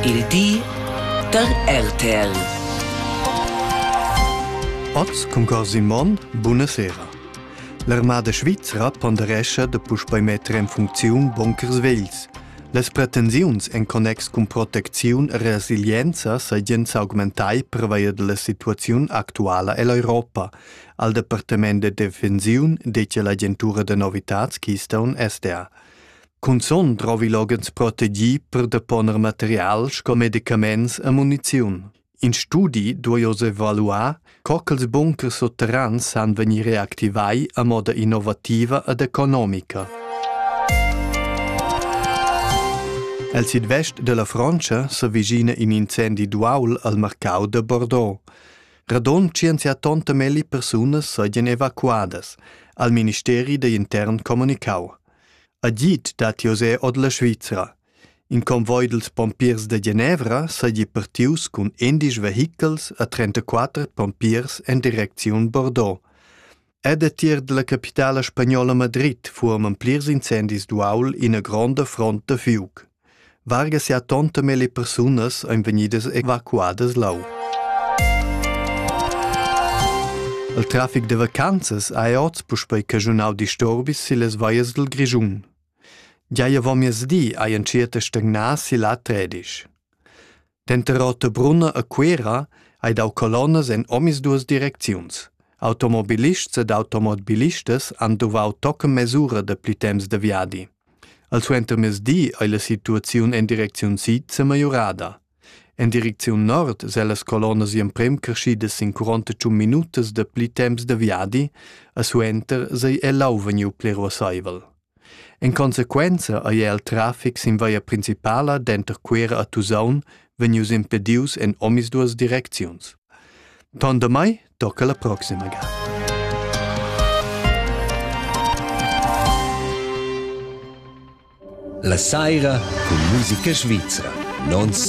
Il di da RTL. Oz cun cor Simon, buna sera. L'armada svizra ponderescha da puspei metter en funcziun bunkers vegls. Las pretensiuns en connex cun protecziun e resilienza seigien s'augmentai pervia della situaziun actuala ell'Europa, al Departament de Defensiun, detg la agentura de novitats Keystone SDA. Cunzun drovi loghens protegì per deponer material sco medicaments e muniziun. In studi duai oz evaluar, co ch'ils bunkers sutterrans san vegnir reactivai a moda innovativa ed economica. El sidvest della Frontscha s'avvicina in incendi d'uaul al marcau de Bordeaux. Radon 180 melli persunas sajan evacuadas, al ministeri da intern comunicau. Agid dat José ord la Svizra. In convoi dels pompiers de Genevra seigi partius cun endisch vehichels a 34 pompiers en direcziun Bordeaux. Ed a tier della capitala spagnola Madrid furoman plirs incendis d'uaul ina gronda front da fiuc. Varga sia tonta melle persunas ein vegnidas evacuadas lau. Il trafic da vacanzas ha oz puspei caschunau disturbis sillas vallas dil Grischun. Gia avon miezdi hai entschiet a stagnar si la tredisch. Denter Rotebrunna e Cuera ei dau colonnas en omisduas direcziuns. Automobilists ed automobilistas han duvau tochen mesura dapli temps de viadi. Al suentermezdi ei la situaziun en direcziun sid semajorada. En direcziun nord se las colonnas emprem creschidas sin 41 minutas dapli temps de viadi, a suenter sei el lau vegniu pli ruasseivel. En consequenza ei el traffic sin via principala denter Cuera a Tusaun vegnius impedius en omisduas direcziuns. Ton damai tocca la proxima ga. La saira cun musica svizra. Nons